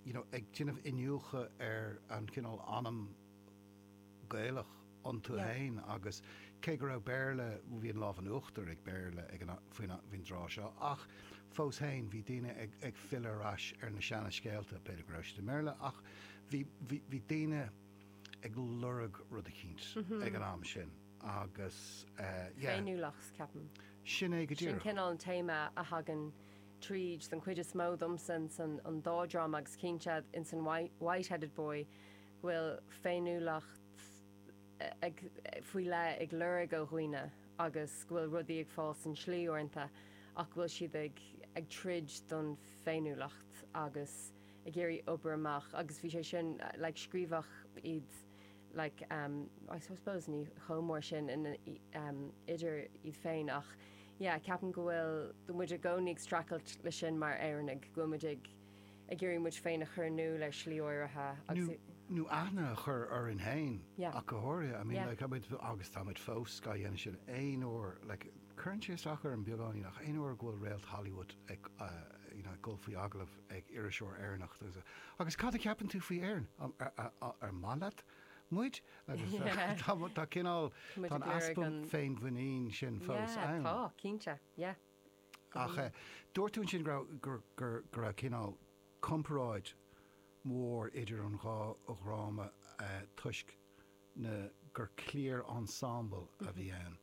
you know ag déanamh iniúchadh ar an chineál anam Gaelach iontu Yeah. féin agus cé go raibh Béarla, bhí an lámh in uachtar ag Béarla ag an a- faoin a- faoin dtráth seo ach fós féin bhí daoine ag, ag filleadh ar ais ar na seana scéalta, b'fhéidir go raibh siad i mBéarla ach bhí, bhí, bhí daoine ag lorg rud éicint ag an am sin agus eh, yeah, Féiniúlacht, ceapaim. sin é go Sin díreach. cineál an téama a thagann tríd don chuid is mó domsa insan an dá dráma agus cinnte insan White-Headed Boy go bhfuil féiniúlacht ag faoi leith ag lorg ó dhaoine agus go bhfuil rudaí ag fáil san slí uaireanta ach go bhfuil siad ag ag troid don féiniúlacht agus ag iarraidh obair amach agus bhí sé sin like scríobhadh iad like um I suppose ní chomh mór sin in um idir iad féin ach yeah ceapaim go bhfuil go muid i gcónaí ag streachailt leis sin mar Éireannaigh go bhfuil muid ag ag iarraidh muid féin a chur in iúl ar shlí áirithe agus i nó aithne a chur orainn féin yeah ach go háirithe I mean yeah like muid agus tá muid fós gá dhéanamh sin aon uair like cuireann sé isteach orm beagáinín ach aon uair go bhfuil réalt Hollywood ag uh you know ag dul faoi agallamh ag iriseoir Éireannach domsa, agus cad a cheapann tú faoi Éirinn? An maith leat muid? Agus tá cineál, tá an easpa féinmhuinín sin fós ann. Yeah, tá, cinnte, yeah. Ach dúirt tú ansin go raibh cineál comparáid mhór idir an dhá dhráma toisc, ná gur cliar ensemble a bhí ann.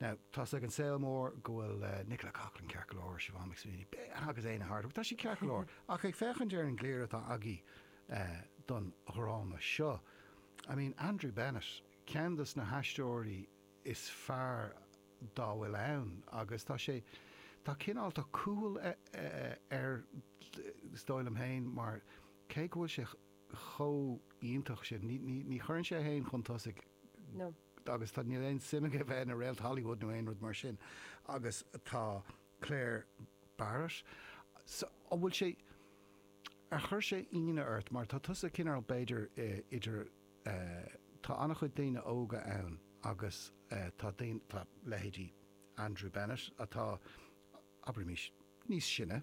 Now, tá's ag an saol mór go bhfuil Nicola Coughlan ceart go leor, Siobhán McSweeney, agus Éanna Hardwicke, tá siad ceart go leor, ach ag féachaint ar an gcliar atá agaibh don dhráma seo, I mean, Andrew Bennett, ceann dos na haisteoirí is fearr dá bhfuil ann agus tá sé, tá cineál, tá cúthail, is dóigh liom féin, mar cé go bhfuil sé, chomh iontach sin. Ní, ní, ní chuireann sé é féin chun tosaigh. No. Agus tá, níl aon suim aige a bheith ina réalt Hollywood nó aon rud mar sin. Agus tá Clare Barrett. So, an bhfuil sé, ar chuir sé ionadh ort mar tá tusa cineál b'fhéidir idir eh, tá an-chuid daoine óga ann agus eh, tá daoine, tá leithéidí Andrew Bennett atá, abraimis, níos sine.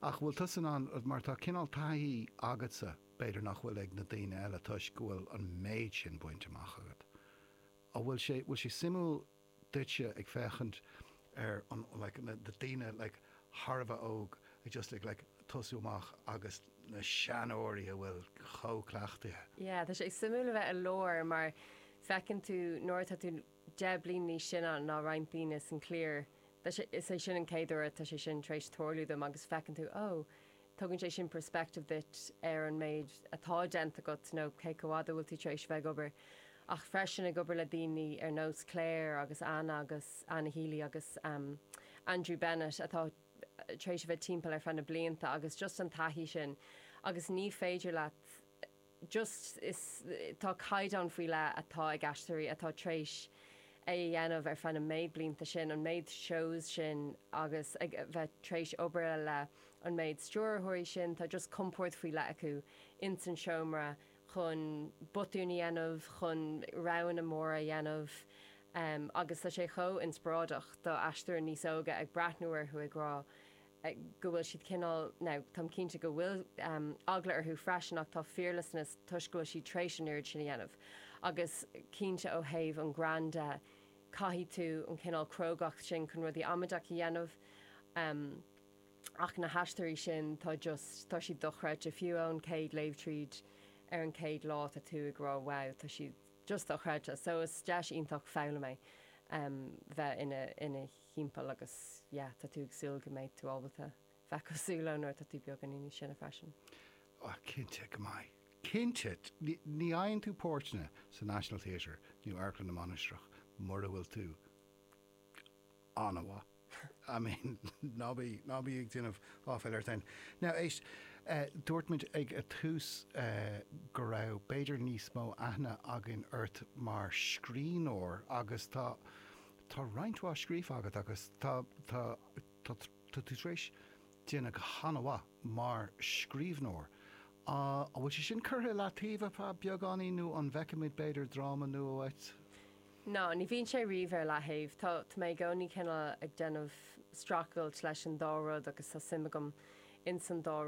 Ach bhfuil tusa in ann, mar tá cineál taithí agatsa b'fhéidir nach bhfuil ag na daoine eile toisc go bhfuil an méid sin bainte amach agat, an bhfuil sé, bhfuil sé suimiúil duitse ag féachaint ar an like na daoine like thar a bheith óg ag just ag like tosú amach agus na seanóirí atá chomh cleachtaithe? Yeah, tá sé suimiúil a bheith i lár mar feiceann tú nuair atá tú. 10 bliain níos sine ná roinnt daoine sa chliar, is é sin an céad uair atá sé sin tar éis tarlú dom agus feiceann tú, ó, tugann sé sin perspective duit ar an méid atá déanta agat nó cé chomh fhada a bhfuil tú tar éis bheith ag obair ach freisin ag obair le daoine ar nós Clare agus Anna agus Anna Healy agus Andrew Bennett atá tar éis a bheith timpeall ar feadh na blianta agus just an taithí sin agus ní féidir leat just tá caighdeán faoi leith atá ag aisteoirí atá tréis é a dhéanamh ar feadh na méid blianta sin, an méid shows sin agus ag bheith tréis obair le an méid stiúrthóirí sin, tá just compord faoi leith acu ins an seomra chun botúin a dhéanamh, chun roghanna móra a dhéanamh agus tá sé chomh inspioráideach do aisteoir níos óga ag breathnú orthu ag rá. go bhfuil siad cineál, now, táim cinnte go bhfuil eagla orthu freisin ach tá fearlessness toisc go bhfuil siad tar éis an oiread sin a dhéanamh agus cinnte ó thaobh an ghrinn de caithfidh tú an cineál crógacht sin chun rudaí amaideach a dhéanamh ach na haisteoirí sin tá just, tá siad dochreidte fiú ón chéad léamh tríd ar an chéad lá tá tú ag rá wow tá siad just dochreidte so is deis iontach foghlaim é bheith ina thimpeall agus yeah tá tú ag súil go mbeidh tú ábalta bheith cosúil leo nuair atá tú beagáinín níos sine freisin. Oh cinnte go mbeidh. Cinnte. Ní fhaigheann tú páirteanna sa National Theatre nó Amharclann na Mainistreach mura bhfuil tú an-mhaith. I mean ná ná bí ag déanamh áiféil ort fhéin. Now éist, dúirt muid ag a tús go raibh b'fhéidir níos mó aithne againn ort mar scríbhneoir agus tá, Tá roinnt mhaith scríofa agat agus tá tú tar éis déanamh go han-mhaith mar scríbhneoir. An bhfuil sé sin curtha i leataobh ar feadh beagáinín nó an bhfeicfimid, b'fhéidir, dráma nua uait? Ná ní bhíonn sé riamh ar leataobh. Tá mé i gcónaí cineál ag déanamh streachailt leis an dá rud agus tá suim agam ins an dá